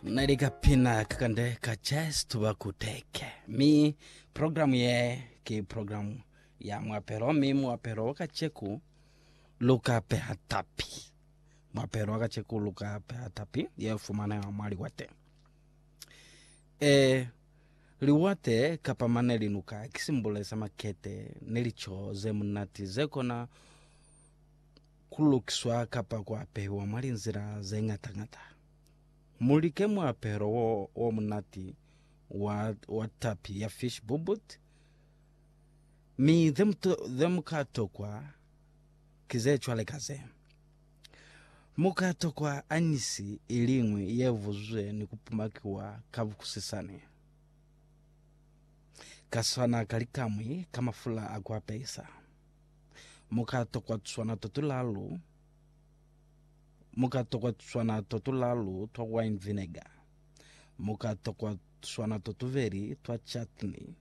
na ile ka pina ka kande ka chest to ba kuteke mi program ye ke program ya mwapelo mi mwapelo wa kacheku luka peha tapi mwapelo wa kacheku luka peha tapi ye fumana ya mwali wa te e liwate kapa mane linuka kisimbole sa makete ne licho ze munati ze kona ku lukiswa kapa ku apehiwa mwa linzila ze ñata-ñata. Mu like muapelo wo o munati wa, wa tapi ya fish bubut, mi ze mu, ze mu ka tokwa ki ze cwale ka ze. Mu ka tokwa anisi i liñwi ye vuzwe ni ku pumakiwa ka bukusisani, ka swana ka likamwi ka mafula a ku apehisa. Mu ka tokwa tuswana to tulalu, mu ka tokwa tuswana to tulalu twa wine vinegar. Mu ka tokwa tuswana to tuveli twa chutney,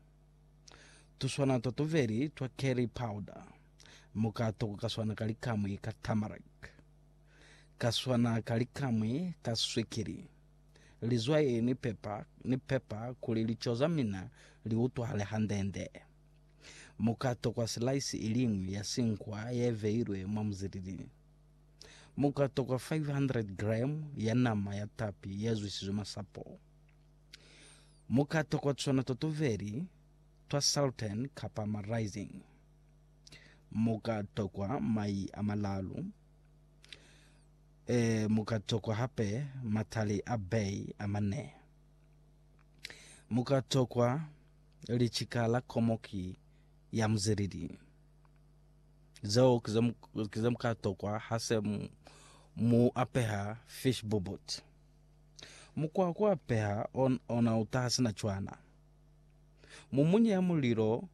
tuswana to tuveli twa curry powder. Mu ka tokwa kaswana ka likamwi ka turmeric, kaswana ka likamwi ka swikili, lizwai ni pepper, ni pepper kuli lico za mina li utwahale hande-nde. Mu ka tokwa silaisi i liñwi ya sinkwa ye beilwe mwa muzilili. Mu ka tokwa 500 gremu ya nama ya tapi ye zwisizwe masapo. Mu ka tokwa tuna twa tuveli twa saltern kapa ma rising. Mu ka tokwa mai a malalu. E, mu ka tokwa hape matali a bay a mane. Mu ka tokwa. Licika la komo ki ya muzeleli. Zeo ki ze mu ka tokwa ha se mu apeha fish bobot. Mukwa wa ku apeha ona u taha sina cwana. Mu munye mulilo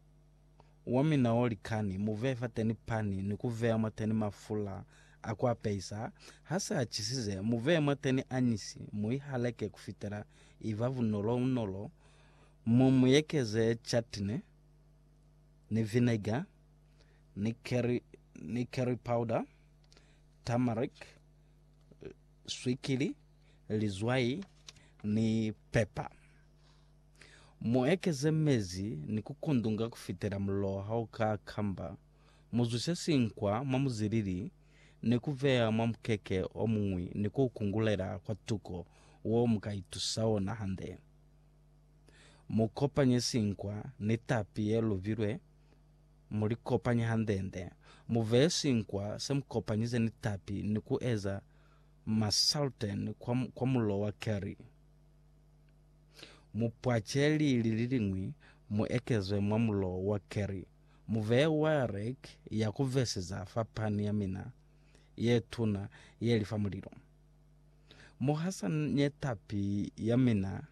wa mina o likani, mu veye fateni pani ni ku veya mwateni mafula a ku apehisa. Ha se a cisize, mu veye mwateni añisi, mu i haleke kufitela i ba bunolo-unolo. Mu mu ekeze chutney, ni vinegar, ni curry, ni curry powder, turmeric, swikili, lizwai, ni pepper. Mu ekeze mezi ni ku kundunga kufitela mullo ha u ka kamba. Mu zwise sinkwa mwa muzilili ni ku beya mwa mukeke o muñwi ni ku u kungulela kwa tuko wo mu ka itusa ona hande. Mu kopanye sinkwa ni tapi ye lubilwe, mu li kopanye hande-nde. Mu veye sinkwa se mu kopanyize ni tapi ni ku eza masaltern kwa, kwa mulilo wa keri. Mu pwace lili li liñwi mu ekezwe mwa mulilo wa keri. Mu veye wayarek ya ku veseza fa pani ya mina ye tuna ye li fa mulilo. Muhasa ne tapi ya mina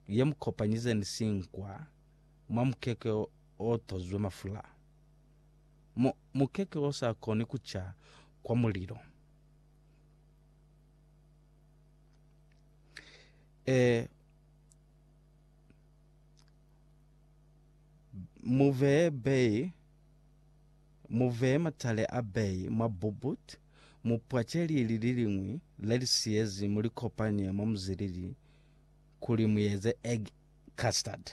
ye mu kopanyizeni sinkwa mwa mukeke o tozwe mafula. Mu, mukeke o sa koni ku ca kwa mulilo. E, mu vee bei. Mu veye matale a bei mwa bubut, mu pwace lili liliñwi le li siyezi mu li kopanye mwa muzilili kuli mu eze egg custard.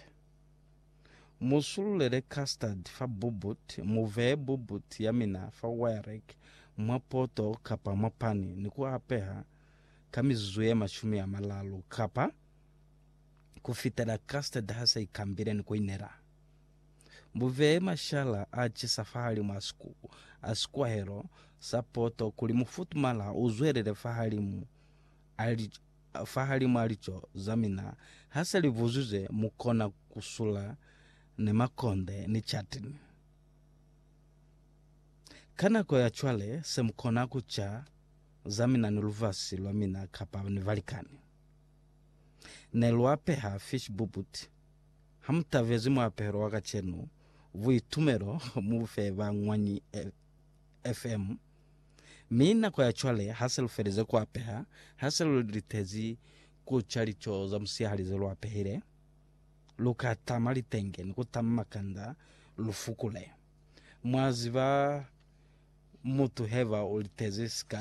Mu sululele custard fa bubut, mu veye bubut ya mina fa wire rack, mwa poto kapa mwa pani ni ku apeha ka mizuzu ye mashumi a malalu kapa ku fitela custard ha se i kambile ni ku inela. Buvee mashala a cisa fahalimu a a sikwahelo sa poto kuli mufutumala u zwelele fahalimu a fahalimu a lico za mina. Ha se li vuzwizwe, mu kona ku sula ni makonde ni catini. Ka nako ya cwale, se mu kona ku ca za mina ni lubasi lwa mina kapa ni balikani. Ne lwa peha fishbubuti. Ha mu tabezi muapelo wa kacenu, buitumelo mu bu fe ba Ñwanyi FM. Mi nako ya cwale ha se lu felize ku apeha, ha se lu litezi ku ca lico za musihali ze lu apehile, lu ka tama litenge ni ku tama makanda lu fukule. Mwa ziba, mutu heba u litezi sika